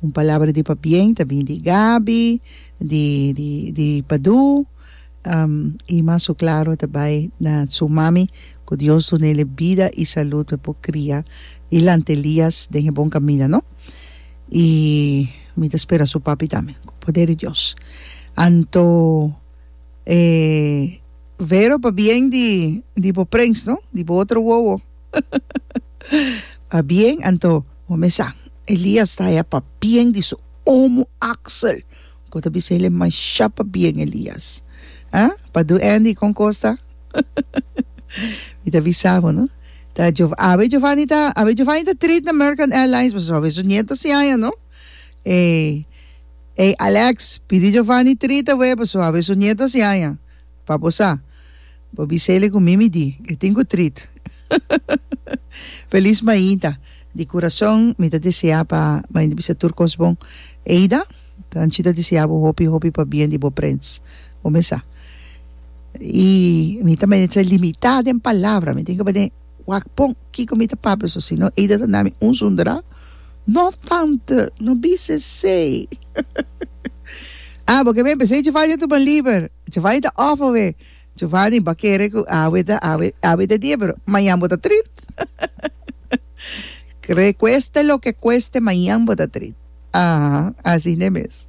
Un palabra di pabien ta bini di Gaby, di di di Padu, y mas su claro ta bay na su mami cu Dios duna el'e bida y salud pa por cria e lanta Elias den e bon camina no, y mi ta spera su papi tambe cu poder di Dios. Anto e Vero pabien di di bo prens no, di bo otro wowo. Tá bien, anto bo mesa. Elias ta haya pa bien di su omo Axel cu ta bisa ele masha pa bien Elias. Ha? Pa do Andy con cos ta? Mi ta bisa bo no. Ta Jov awe Jovani ta awe Jovani ta treat na American Airlines pasobra awe su nieto a siaña no. Ey ey Alex pidi Jovani treat awe pasobra awe su nieto a siaña pa bo sa. Bo bisele cu mi mi di, e tin cu trit. Feliz Maida, di curason mi ta desea pa Maida bisa tur cos bon. Eida, Tanchi ta desea bo hopi hopi pa bien di bo prins. Bo mes sa. Y mi ta mester ta limita den palabra, mi tin caba den wak pon kico mi ta papia so, sino Eida ta nami un zundera, No tante, no bisa esey. Ah, bo ke ben p'esey Djevanja ta bon liber, Djevanja ta off awe. Giovani, Bo a kere ku awe ta awe, awe ta die pero mañan bo ta trit. Kre, kueste loke kueste mañan bo ta trit. Aha, asina mes.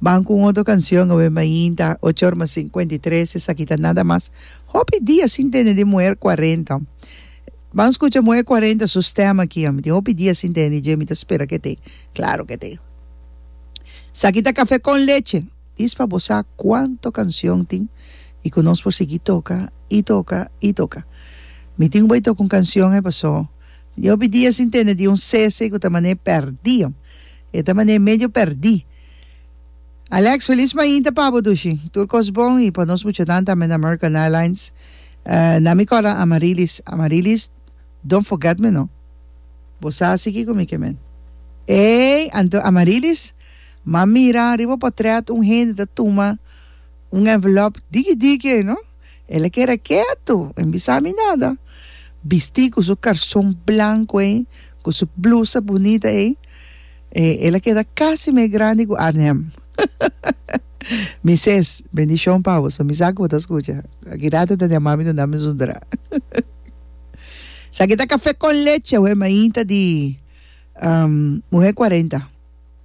Ban ku un otro kansion awe mainta ocho or mas sinkuenta i tres, esaki ta nada mas hopi dia sin tene di muher kuarenta. Ban skucha muher kuarenta su stèm aki, mi tin hopi dia sin tene di dje, mi ta spera ke te, klaro ke te. Esaki ta kafé kon leche. Dis pa bo sa cuanto cancion tin y cu nos por sigui toca y toca y toca. Mi tin cu bay toca un cancion e paso tin hopi dia sin tene di un cese cu ta mane perdi. E ta mane medio perdi. Alex, Feliz mainta pa bo Dushi. Tur cos bon y pa nos muchanan tambe na American Airlines. Na mi cora Amarilis, Amarilis don't forget me no. Bo sa sigui cu mi ke men. Ey, anto Amarilis. M'a mira riba potret un hende ta tuma un envelop diki diki ei no. El a keda ketu, e no bisa mi nada. Bisti ku su karson blanku ei, ku su blusa bunita ei, el a keda kasi mes grandi ku Arnhem. Mi ses, Bendishon pa bo, so mi sa ku bo ta skucha. Akidad e ta den mami duna mi zundra. Esaki ta Kafé kon Leche, oe mainta di muhé kuarenta.